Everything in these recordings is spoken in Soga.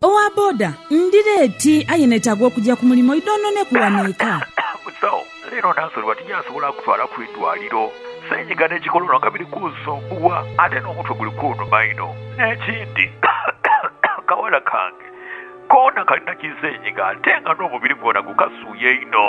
Owa boda, Ndi leeti aye neetaaga okugya ku mulimu idhoononeku wano eka. Musawo, Leero Nansolwa tijasobola kutwala ku idwaliro. Senyiga ne kikolono nga biri kunsumbuwa ate n'omutwe guli kunuma inho. N'ekindi akawala kange koona kalina kisenyiga ate nga n'omubiri gwona gukasuuya inho.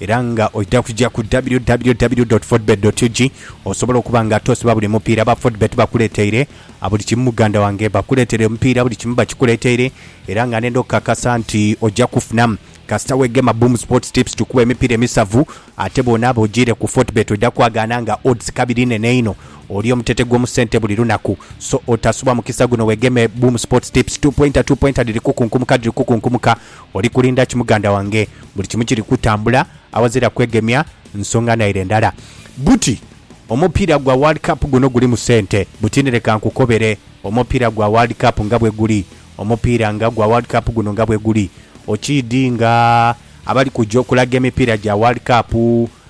Era nga oidha kuja ku www.fordbet.ug osobole okuba nga tosiba buli mupiira aba Fordbet bakuleteire a buli kimu muganda wange. Bakuletere omupiira buli kimu bakikuleteire era nga nenda okukakasa nti oja kufunamu kasita wegema Boom Sports Tips tukuwa emipiira emisavu ate bwonaaba ojiire ku Fortbet oidha kwagaana nga odds kabiri nene inho. Oli omutete gw'omu sente buli lunaku so otasubwa mukisa guno wegeme Boom Sports Tips. Two pointer two pointer dhiri kukunkumuka dhiri kukunkumuka. Oli kulinda ki muganda wange? Buli kimu kiri kutambula aghazira kwegemya nsonga naire ndala. Buti, Omupiira gwa World Cup guno gulimu sente? Buti, Ni leka nkukobere omupiira gwa World Cup nga bwe guli. Omupiira nga gwa World Cup guno nga bwe guli, okiidhi nga abali kuja okulaga emipiira gya World Cup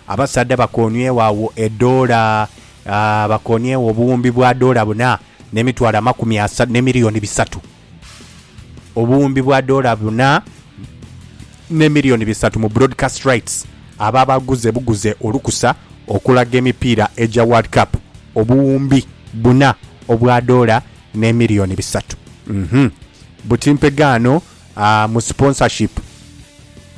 abasaadha bakooniegho agho edoola, aah, bakooniegho obuwumbi bwa doola buna n'emitwalo amakumi asatu, n'emiliyoni bisatu. obuwumbi bwa doola buna ne milioni bisatu mu broadcast rights abo abaaguze buguze olukusa okulaga emipiira egya World Cup obuwumbi buna obwa doola ne milioni bisatu uhmm buti mpegaano aah mu sponsorship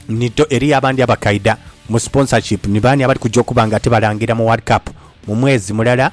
nito eriyo abandi abakaida mu sponsorship ni baani abali kuja okuba nga ate balangira mu World Cup mu mwezi mulala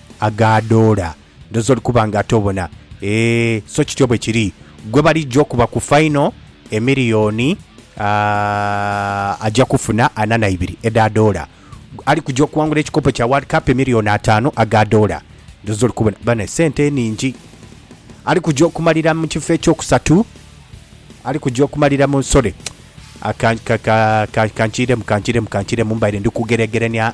agaadoola. Ndhooza oli kuba ng'ate obona. Eeh, so kityo bwe kiri. Gwe balijja okuba ku faino, emiliyoni, aah, aja kufuna ana na ibiri edha doola. Ali kuja okuwangula ekikopo kya World Cup, emiliyoni ataanu aga doola. Ndhooza oli kubona. Bano esente enhingi. Ali kuja okumalira mu kifo eky'okusatu, ali kuja okumalira mu, sorry, ka, ka, ka, ka, kankiiremu, kankiiremu, kankiiremu, mbaire ndi kugeregerania.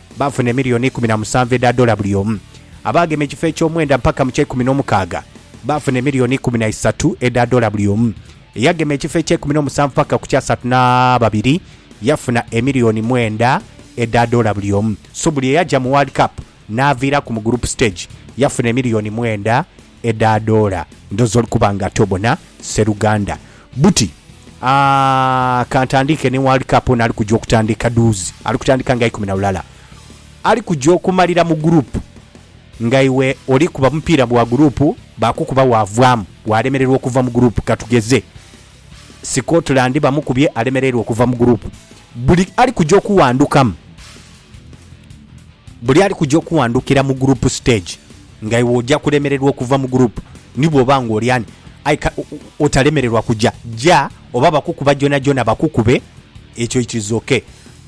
baafuna emiliyoni ikumi na musanvu edha dola buli omu. Abaagema ekifo eky'omwenda mpaka mu ky'eikumi n'omukaaga baafuna emiliyoni ikumi na isatu edha dola buli omu. Eyagema ekifo eky'eikumi n'omusanvu paka ku ky'asatu na babiri yafuna emiliyoni mwenda edha dola buli omu. So buli eyaja mu World Cup n'aviiraku mu group stage yafuna emiliyoni mwenda Edadoola ndhoza oli kuba nga tobona sseruganda. Buti, Aah, ka ntandiike ni World Cup ono ali kuja okutandiika duuzi. Ali kutandiika nga ikumi na lulala. Ali kuja okumalira mu group nga iwe oli kuba mupiira gwa group baakukuba waavaamu, waalemererwa okuva mu group. Ka tugeze Scotland bamukubye alemereirwa okuva mu group. Buli ali kuja okuwandukamu. Buli ali kuja okuwandukira mu group stage nga iwe oja kulemererwa okuva mu group ni bwoba nga oli ani aye ka otalemererwa kuja ja oba bakukuba jonajona bakukube ekyo it is ok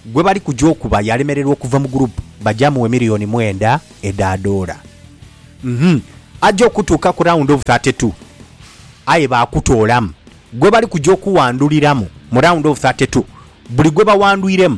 gwebali kuja okuba yalemererwa okuva mu group baja muwe million mwenda eda doola uhmm aja okutuuka ku round of 32 aye bakutoolamu gwebali kuja okuwanduliramu mu round of 32 buli gwebawandwiremu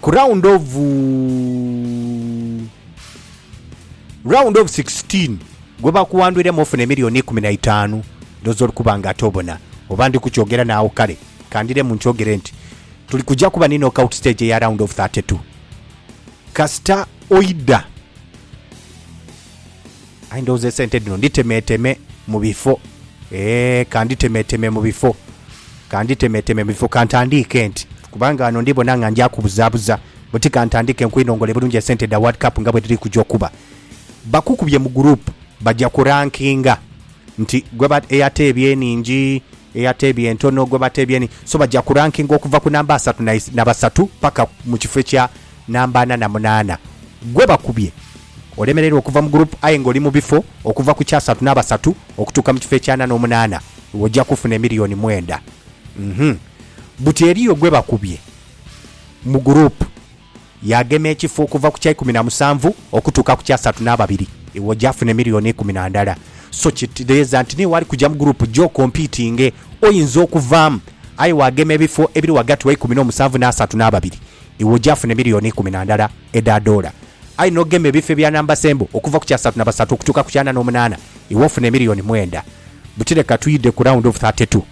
Ku round of round of 16 gwebakuwandwiremu ofuna emiliyoni ikumi na itaanu ndhooza oli kuba nga ate obona oba ndi kukyogera naagho kale kandiremu nkyogere nti tuli kuja kuba ni knockout stage eya round of 32 kasita oidha. Aye ndhowooza esente dhino nditemeeteme mu bifo. Eeh, ka nditemeeteme mu bifo. Ka nditemeeteme mu bifo. Ka ntandiike nti, kubanga ghano ndi bona nga ndi akubuzaabuza, buti ka ntandiike nkwinongole bulungi esente dha World Cup nga bwe dhiri kuja okuba. Bakukubye mu group, baja ku rankinga nti gwe eyateebye enhingi, eyateebye entono, gwe bateebye enhingi. So baja ku rankinga okuva ku namba asatu na basatu paka mu kifo ekya namba ana na munaana gwe bakubye olemererwa okuva mu group aye nga oli mu bifo okuva ku kyasatu n'abasatu okutuuka mu kifo eky'ana n'omunaana ojja kufuna emiliyoni mwenda uhmm buti eriyo gwe bakubye mu group yagema ekifo okuva ku kyaikumi na musanvu okutuuka ku kyasatu n'ababiri iwe ojja funa emiliyoni ikumi na ndala so kitereeza nti niiwe ali kugya mu group gye okompitinge oyinza okuvaamu aye wagema ebifo ebiri ghagati wa ikumi n'omusanvu n'asatu n'ababiri Iwe oja funa emiliyoni eikumi na ndala edha doola, aye n'ogema ebifo ebya namba sembo okuva ku kyasatu na basatu okutuuka ku kyana n'omunaana, iwe ofuna emiliyoni mwenda. Buti leka twidhe ku round of thirty two.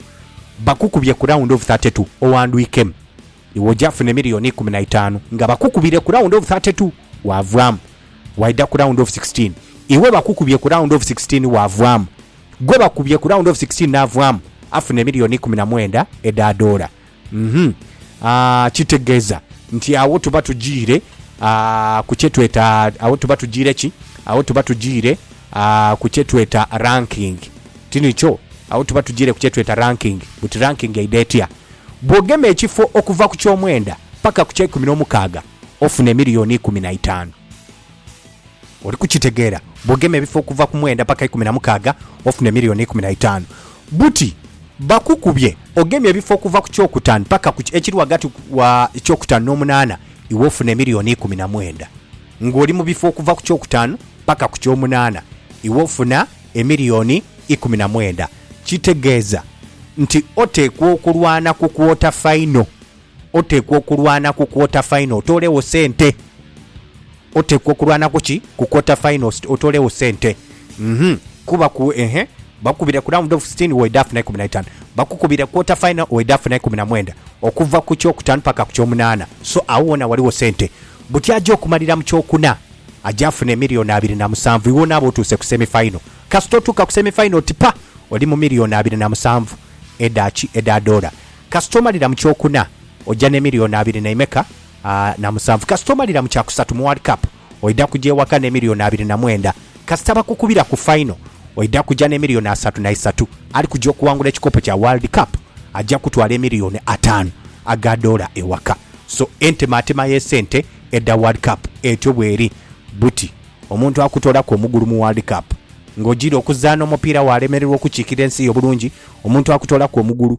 Bakukubye ku round of thirty two oghandwikemu. Iwe oja funa emiliyoni eikumi na itaanu. Nga bakukubire ku round of thirty two, waavaamu. Waidha ku round of sixteen. Iwe bakukubye ku round of sixteen waavaamu. Gwe bakubye ku round of sixteen n'avaamu, afuna emiliyoni eikumi na mwenda edha doola. Kitegeeza nti agho tuba tujiire ku kye tweta, agho tuba tujiire ki? Agho tuba tujiire ku kye tweta ranking. Tinikyo? Agho tuba tujiire ku kye tweta ranking. Buti ranking eidha etya? Bw'ogema ekifo okuva ku ky'omwenda paka ku ky'eikumi n'omukaaga, ofuna emiliyoni ikumi na itaanu. Oli kukitegeera? Bw'ogema ebifo okuva ku mwenda paka ikumi na mukaaga, ofune milioni ikumi na itaanu. Buti bakukubye ogemye ebifo okuva ku kyokutaanu paka ku ekiri ghagati wa ekyokutaanu n'omunaana, iwe ofune milioni ikumi na mwenda. Ng'oli mu bifo okuva ku kyokutaanu paka ku ky'omunaana, iwe ofuna emilioni ikumi na mwenda. Kitegeeza nti oteekwa okulwana ku kwota faino. Oteekwa okulwana ku quarter final otoolegho sente. Oteekwa okulwana ku ki? Ku quarter final otoolegho sente. Uhmm kuba ku ehe bakukubire ku round of sitini weidha funa ikumi na itaanu. Bakukubire quarter final weidha funa ikumi na mwenda. Okuva ku kyokutaanu paka ku kyomunaana. So agho ghona ghaligho sente. Buti aja okumalira mu kyokuna aja afuna emiliyoni abiri na musanvu iwe onaabe otuuse ku semi final. Kasita otuuka ku semi final oti pa! Oli mu miliyoni abiri na musanvu edha ki? Edha doola. Kasita omalira mu kyokuna oja ne million abiri naimeka na musanvu kasita omalira mu kyakusatu mu world cup oida kuja ewaka ne million abiri na mwenda kasita bakukubira ku final oida kuja ne million asatu naisatu ali kuja okuwangula ekikopo kya world cup aja kutwala emillion atanu aga dollar ewaka so entematema ye sente edha world cup etyo bweri buti omuntu akutoraku omugulu mu world cup nga ojira okuzana omupiira walemererwa okukikira ensi yo bulungi omuntu akutoraku omugulu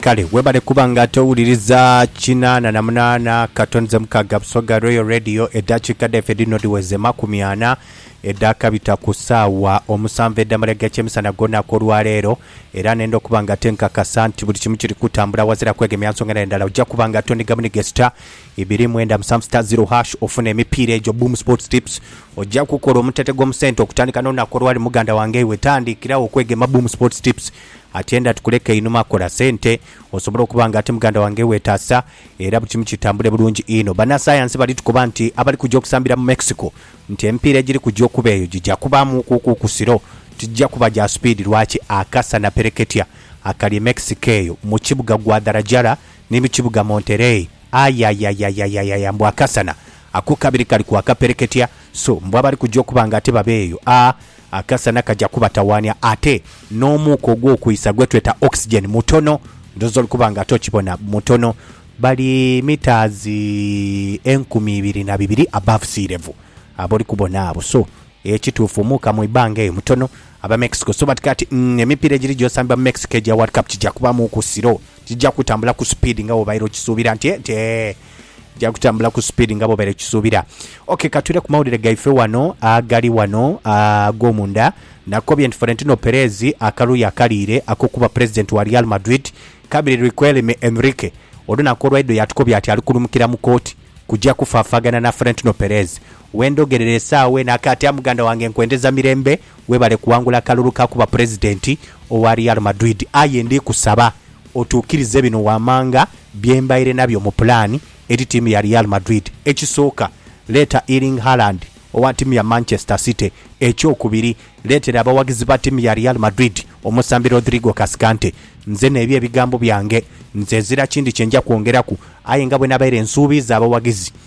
Kale webale kuba nga ate owuliriza kinaana na munaana katoni ze mukaaga Busoga Royal Radio eddakiika dhaife dhino dhiweze makumi ana edhaakabita ku ssaawa omusanvu edh'amalega ky'emisana gw'olunaku olwaleero era nenda okuba nga ate nkakasa nti buli kimu kiri kutambula wazira kwegemya nsonga na ndala ojja kuba nga ate onighamunigha esita Ibiri mwenda musanvu sita ziro hash ofune emipiira egyo Boom Sports Tips. Ojja kukola omutete gw'omu sente okutandika n'olunaku olwali muganda wange iwe tandikirawo okwegema Boom Sports Tips atyenda tukuleke einhuma kola sente osobole okuba nga ati muganda wange wetaasa era bulikimu kitambule bulungi inho. Banasayansi bali tukoba nti abali kujja okusambira mu Mexico nti emipiira egiri kujja okuba eyo gigya kubaamu ku kukusiro tigigya kuba gya supiidi lwaki akasana pereketya akali e Mexico eyo mu kibuga Guadalajara Ni mu kibuga Monterey. Ayayayayayaya! Mbu akasana akokabiri kali kwaka pereketya, so mbu abali kuja okuba nga ate baba eyo, a akasana kaja kubatawaania. Ate n'omuuka ogw'okwisa gwe tweta oxygen mutono, ndhooza oli kuba nga ate okibona, mutono. Bali metres enkumi ibiri na bibiri above sea level ab'oli kubona abo. So, ekituufu omuuka mu ibanga eyo mutono. Aba Mexico so bati kati, umm, emipiira egiri gyosambibwa mu Mexico egya World Cup kija kubaamuuku siro. Tija kutambula ku speed nga bwobaire okisuubira nti nti ee Tija kutambula ku speed nga bwobaire okisuubira Ok katwire ku mawulire gaife wano agali wano agomunda Nakobye nti Florentino Perez akaluuyi akaliire akokuba Pulezidenti wa Real Madrid kabiri Riquelme Enrique olunaku olwaidho yatukobya ati alikulumukira mu kooti kuja kufaafagana na Florentino Perez Wendogerera esaawa eno akaati a muganda wange nkwendeza mirembe Webale kuwangula kalulu ka kuba Pulezidenti owa Real Madrid aye ndi kusaba otuukirize bino wammanga bye mbaire nabyo mu pulaani eri ttiimu ya Real Madrid. Ekisooka, leeta Erling Haaland owa ttiimu ya Manchester City. Ekyokubiri, leetera abawagizi ba ttiimu ya Real Madrid omusambi Rodrigo Cascante. Nzena ebyo ebigambo byange, nze ezira kindi kye nja kwongeraku aye nga bwe nabaire nsuubiiza abawagizi,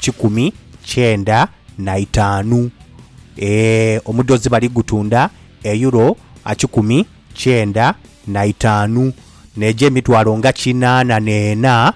kikumi kyenda na itaanu. Ee, omudhozi bali gutunda Euro akikumi kyenda na itaanu, n'ejo emitwalo nga kinaana n'ena,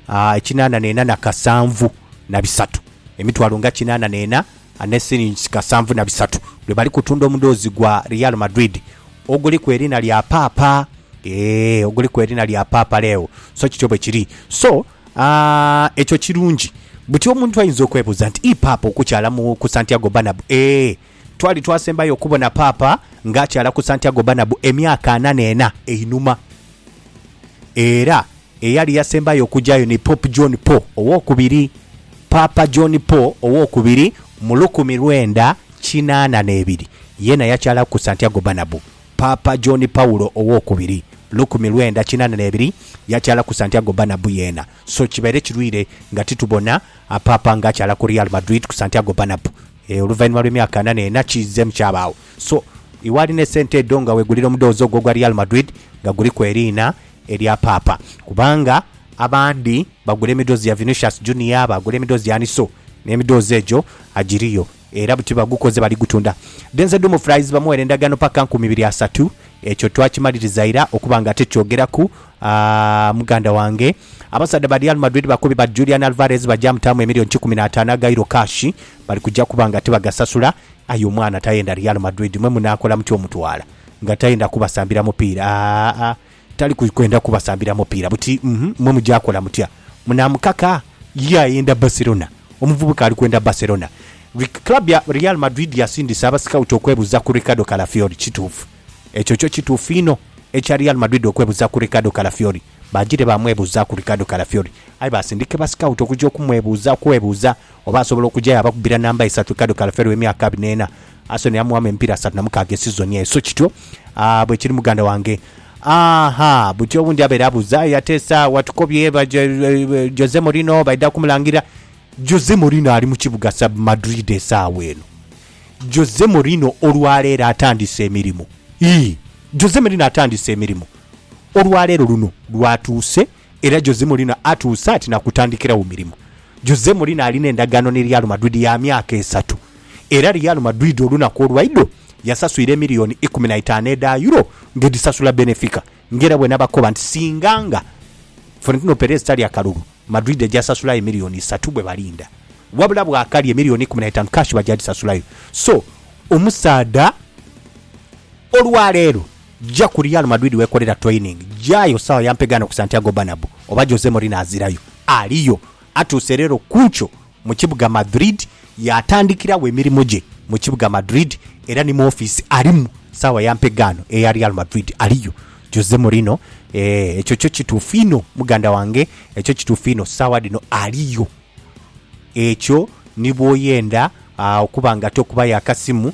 aa, ekinaana n'ena na kasanvu na bisatu. Emitwalo nga kinaana n'ena ne silingis kasanvu na bisatu, lwe bali kutunda omudhozi gwa Real Madrid oguliku eriina lya Paapa. Ee, oguliku eriina lya Paapa Leo. So kityo bwe kiri. So, A Ekyo kirungi. Buti omuntu ayinza okwebuuza nti, Ii Paapa okukyala mu ku Santiago Bernabeu? Ee. Twali twasembayo okubona Paapa ng'akyala ku Santiago Bernabeu emyaka ana n'ena einhuma. Era eyali yasembayo okujayo ni Pope John Paul Owokubiri. Paapa John Paul Owokubiri mu lukumi lwenda kinaana n'ebiri, yeena yakyala ku Santiago Bernabeu. Paapa John Paulo Ow'okubiri, lukumi lwenda kinana n'ebiri, yakyala ku Santiago Bernabeu yeena. So kibaire kirwire nga titubona a Paapa nga akyala ku Real Madrid ku Santiago Bernabeu. Ee, oluvainhuma lw'emyaka anana ena kiizemu kyabaagho. So, iwe alina esente edho nga wegulira omudhoozi ogwo ogwa Real Madrid nga guliku eriina erya Paapa. Kubanga abandi bagula emidhoozi ya Vinicius Junior, baagula emidhoozi ya ani so n'emidhoozi egyo agiriyo. Era buti bagukoze baligutunda. Denze Dumo Fries bamuwera endagaano paka nkumi biri asatu. Ekyo twakimaliriza ira okuba nga ate kyogeraku aah muganda wange. Abasaadha ba Real Madrid bakobi but Julian Alvarez baja mutaamu emillion kikumi na ataanu aga euro cash. Bali kuja kuba nga tibagasasula. Aye omwana tayenda Real Madrid mwe munaakola mutya omutwala nga tayenda kubasambira mupiira aah. Tali kwenda kubasambira mupiira buti mmwe muja kola mutya? Munaamukaka? Ye ayenda Barcelona? Omuvubuka ali kwenda Barcelona. Club ya Real Madrid yasindise abasikawuti okwebuza ku Ricardo Calafiori. Kituufu. Ekyo kyo kituufu inho. Ekya Real Madrid okwebuza ku Ricardo Calafiori, baajire baamwebuza ku Ricardo Calafiori. Aye baasindika basikawuti okuja okumwebuza, okwebuza oba asobola okuja yaabakubira namba isatu Ricardo Calafiori ow'emyaka abiri n'ena. Asoni amuwamu emipiira asatu na mukaaga esizoni eyo, so kityo bwe kiri muganda wange. Aha, buti owundi abaire abuuza, aye ate sa watukobye ba Jose Mourinho baidha kumulangirira? Jose Mourinho ali mu kibuga sub Madrid esaawa eno. Jose Mourinho olwaleero atandise emirimu. Ii, Jose Mourinho atandise emirimu olwaleero luno lwatuuse. era Jose Mourinho atuuse ati nakutandikiragho mirimo. Jose Mourinho alina endagaano ni Real Madrid ya myaka esatu era Real Madrid olunaku olwaidho yasaswire emiliyoni ikumi na itaanu edha Euro nga edhisasula Benefica nga era bwenabakoba nti singa nga Florentino Perez tali akalulu Madrid eja sasulayo emiliyoni isatu bwebalinda wabula bwakali emiliyoni ikumi na itaanu cash baja dhisasulayo so omusaadha olwaleero Jja ku Real Madrid wekolera training. Jaayo sawa ya mpegaano ku Santiago Bernabeu oba Jose Mourinho azirayo, aliyo. Atuuse leero kunkyo mu kibuga Madrid yaatandikiragho emirimu gye mu kibuga Madrid era ni mu ofiisi alimu sawa ya mpegaano eya Real Madrid aliyo. Jose Mourinho, Eeh ekyo kyo kituufu inho muganda wange, ekyo kituufu inho sawa dhino aliyo. Ekyo ni bwoyenda okuba nga tokubayo akasimu,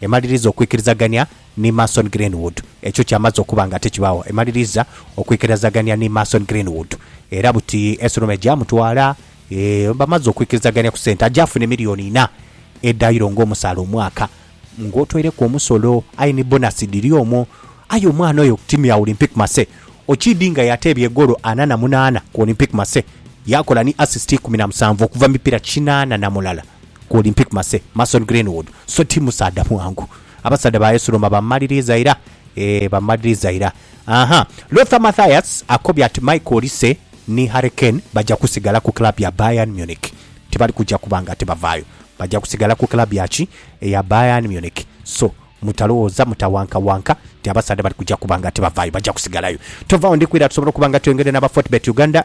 Emaliriza okwikirizagania ni Mason Greenwood. Ekyo kyamaze okuba nga tikibaagho. Emaliriza okwikirazagania ni Mason Greenwood. Era buti Esurume gyamutwala, eeh, bamaze okwikirizagania ku sente. Aja afune milioni inha edha Euro ng'omusaala omwaka. Ng'otoireku omusolo, aye ni bonasi dhiri omwo. Aye omwana oyo ku tiimu ya Olympique Marseille, okiidinga yateebya egoolo ana na munaana ku Olympique Marseille, yaakola ni asisiti ikumi na musanvu okuva mu mipiira kinaana na mulala. ku Olympic Marseille, Mason Greenwood, so ti musaadha mwangu. Abasaadha ba AS Roma bamumaliriiza ira, ee, bamumaliriiza ira. Aha, Lothar Mathias akobye ati Michael Olise ni Harry Kane baja kusigala ku club ya Bayern Munich. Tibali kuja kuba nga tibavaayo. Baja kusigala ku club ya ki? Eya Bayern Munich. So, mutalowooza, mutawankawanka nti abasaadha bali kuja kuba nga tibavaayo. Baja kusigalayo. Tovaawo, ndi kwira tusobole okuba nga tweyongedde n'aba Fortebet Uganda.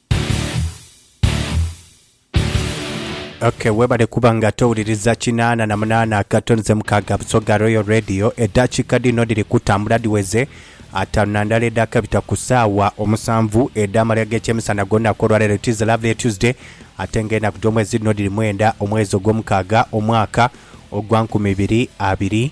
Ok, webale kuba nga towuliriza kinaana na munaana akato nze mukaaga Busoga Royal Radio. Eddakiika dhino dhiri kutambula dhiweze ataanu na ndala edhakabita ku saawa omusanvu edh'amalya g'ekyemisana ag'olunaku olwaleero. It is a lovely Tuesday ate nga enaku dh'omwezi dhino dhiri mwenda omwezi ogw'omukaaga omwaka ogwa nkumi ibiri abiri